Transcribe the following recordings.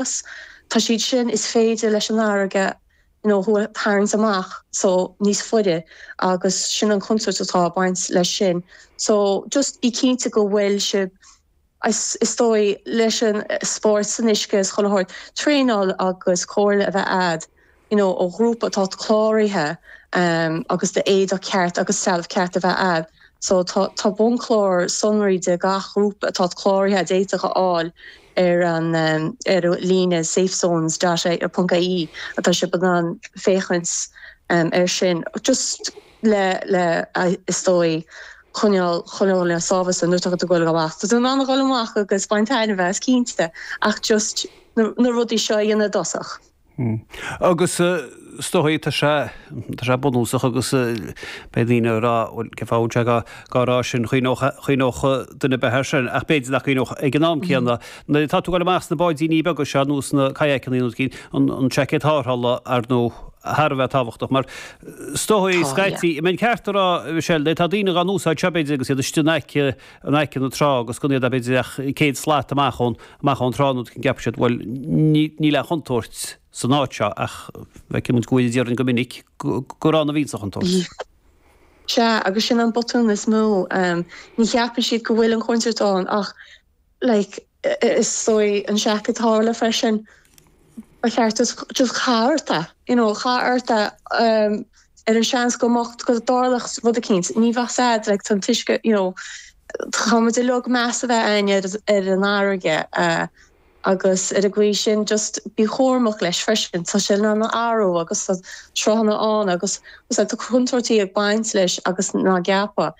bás. Tá siad sin is féidir leis an fharraige nó thú a tharraingt amach so níos faide agus sin an chontúirt atá ag baint leis sin. So just bí cinnte go bhfuil sibh is is dóigh leis an spóirt san uisce is chuile shórt traenáil agus comhairle a bheith a'd. you know, ó ghrúpa atá cláraithe agus éadach ceart agus trealamh ceart a bheith agaibh, so tá bunchlár sonraí de gach grúpa atá cláraithe a d'fhéadfá a fháil ar an ar an líne safezones dot i e ponc i e tá sibh in ann féachaint air sin just le le is dóigh coinneáil coinneáil le sábháilteacht nuair atá tú ag dul amach tá tú in ann a dhul amach agus baint taitneamh as cinnte ach just na na rudaí seo a dhéanamh i dtosach. Hm. Agus is dóigh tá sé, tá sé bunúsach agus beidh daoine ag rá, bhuel, cén fáth a bhfuil sé dhá, dhá rá sin, chuimhneodh, chuimhneodh duine ar bith air sin ach b'fhéidir nach gcuimhneodh ag an am céanna. Nuair atá tú ag dul amach sna báidíní beaga seo nó sna kayakannaí nó eicínt, an, an seaicéad tarrthála ar ndóigh thar a bheith tábhachtach mar is dóigh Tá, yeah. scaití, an mbeinn ceart a rá, Michelle, tá daoine á n-úsáid seo b'fhéidir agus iad istigh in aice in aice na trá agus gan iad b'fhéidir ach céad slat amach ón amach ón trá nó rud eicínt ceapann siad bhuel ní níl aon chontúirt san áit seo ach feiceann muid go bhfuil in Éirinn go minic go gurb ann a bhíonns a' chontúirt. Sea agus sin an botún is mó. Ní cheapann siad go bhfuil an chontúirt ann ach like Is dóigh an seaicéad tarrthála freisin. Ba cheart duit just caith ort é, you know, caith ort é ar an seans go mbeadh go dtarlódh rud eicínt. Ní bheadh a fhios a'd like tá an t-uisce, you know, caithfidh muid uilig meas a bheith againn ar an fharraige agus ar an gcaoi sin just bí cúramach leis freisin. Tá sé in ann athrú agus tá sruthanna ann agus bhfuil a fhios a'd tá contúirtí ag baint leis agus ná ceapadh.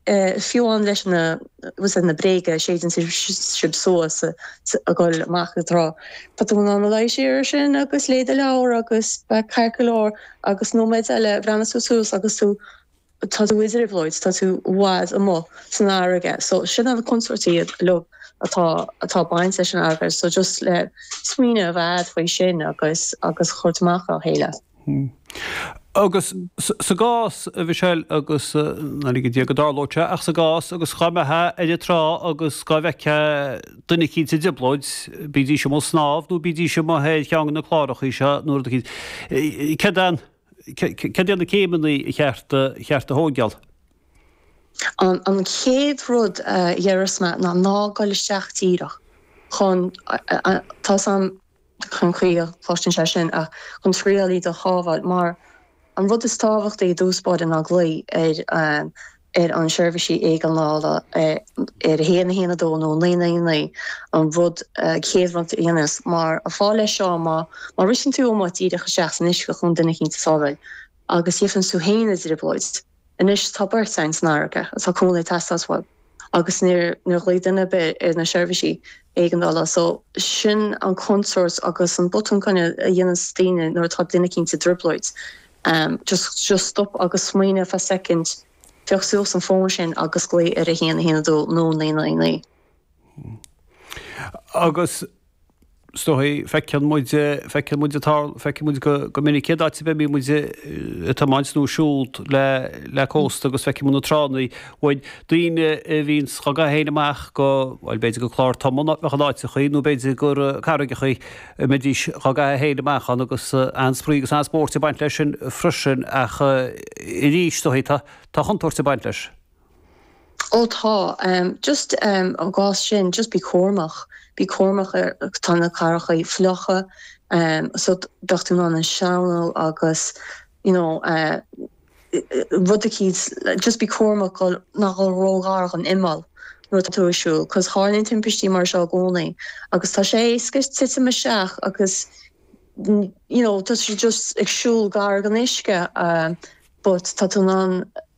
fiú amháin leis na, bhfuil a fhios a'd, na bréagáin a séideann sibh suas ag goil amach ón trá. Tá tú in ann luí siar ar sin agus léigh do leabhar agus beidh ceart go leor agus nóiméid eile breathnaíonn tú suas agus tú, tá tú i dtrioblóid, tá tú i bhfad amuigh san fharraige. So sin an chontúirt uilig atá, atá baint leis an fharraige so just le smaoineamh a bheith a'd faoi sin agus, agus chuairt amach dá chéile. Agus sa gcás, a Mhichelle, agus nár lige Dia go dtarlódh sé, ach sa gcás agus dhá mbeitheá ar an trá agus dhá bhfeictheá duine eicínt sa dtrioblóid, bídís amuigh ag snámh nó bídís amuigh ar cheann de na clárachaí seo nó rud eicínt, céard é, céard iad na céimeannaí ba cheart, cheart a thóigeáil? An, an chéad rud a déarfas mé ná ná goil isteach díreach chun, tá san, chun caoi a gcloisteann sé sin ach chun triail a bhaint iad a shábháil mar an rud is tábhachtaí i dtús báire ná glaoi ar ar an seirbhísí éigeandála ar 112 nó 999 an rud chéad rud le déanamh mar an fáth leis seo má má ritheann tú amuigh díreach isteach san uisce chun duine eicínt a shábháil agus faigheanns tú féin i dtrioblóid. Anois tá beirt ann san fharraige atá cúnamh ag teastáil uathu agus níor ghlaoigh duine ar bith ar na seirbhísí éigeandála so sin an chontúirt agus an botún coitianta a dhéananns daoine nuair atá duine eicínt i dtrioblóid just just stop agus smaoineamh fá soicind, pioc suas an fón sin agus glaoigh ar a haon a haon a dó nó naoi naoi naoi. Agus is dóigh feiceann muid, feiceann muid an tarl, feiceann muid go, go minic cén áit ar bith bíonn muid ag tiomáint nó ag siúl le, le cósta agus feiceann muid na tránna. Bíonn daoine a bhíonn dhá gcaitheamh féin amach go, bhuel b'fhéidir go clár tumtha nó achan áit a chaoi nó b'fhéidir gur carraigreacha a mbeidís dhá gcaitheamh féin amach ann agus an-spraoi agus an-spóirt ag baint leis sin freisin ach arís, is dóigh, tá, tá contúirt ag baint leis. Ó tá, just sa gcás sin, just bí cúramach, bí cúramach ar, tá na carraigreachaí fliucha so beadh tú in ann sleamhnú agus you know rudicíds, just bí cúramach gan a dhul ró-ghar dhon imeall nuair atá tú ag siúl cos tarlaíonn timpistí mar seo i gcónaí agus tá sé éasca titim isteach agus you know tá tú just ag siúl gar gon uisce but tá tú in ann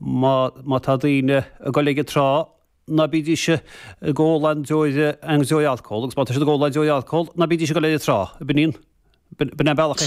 Má tá daoine ag gol ag an trá, ná bídís ag ól aon deoir, aon deoir alcóil, agus má tá siad ag ól aon deoir alcóil, ná bídís ag gol ag an trá. B'in é an bealach a.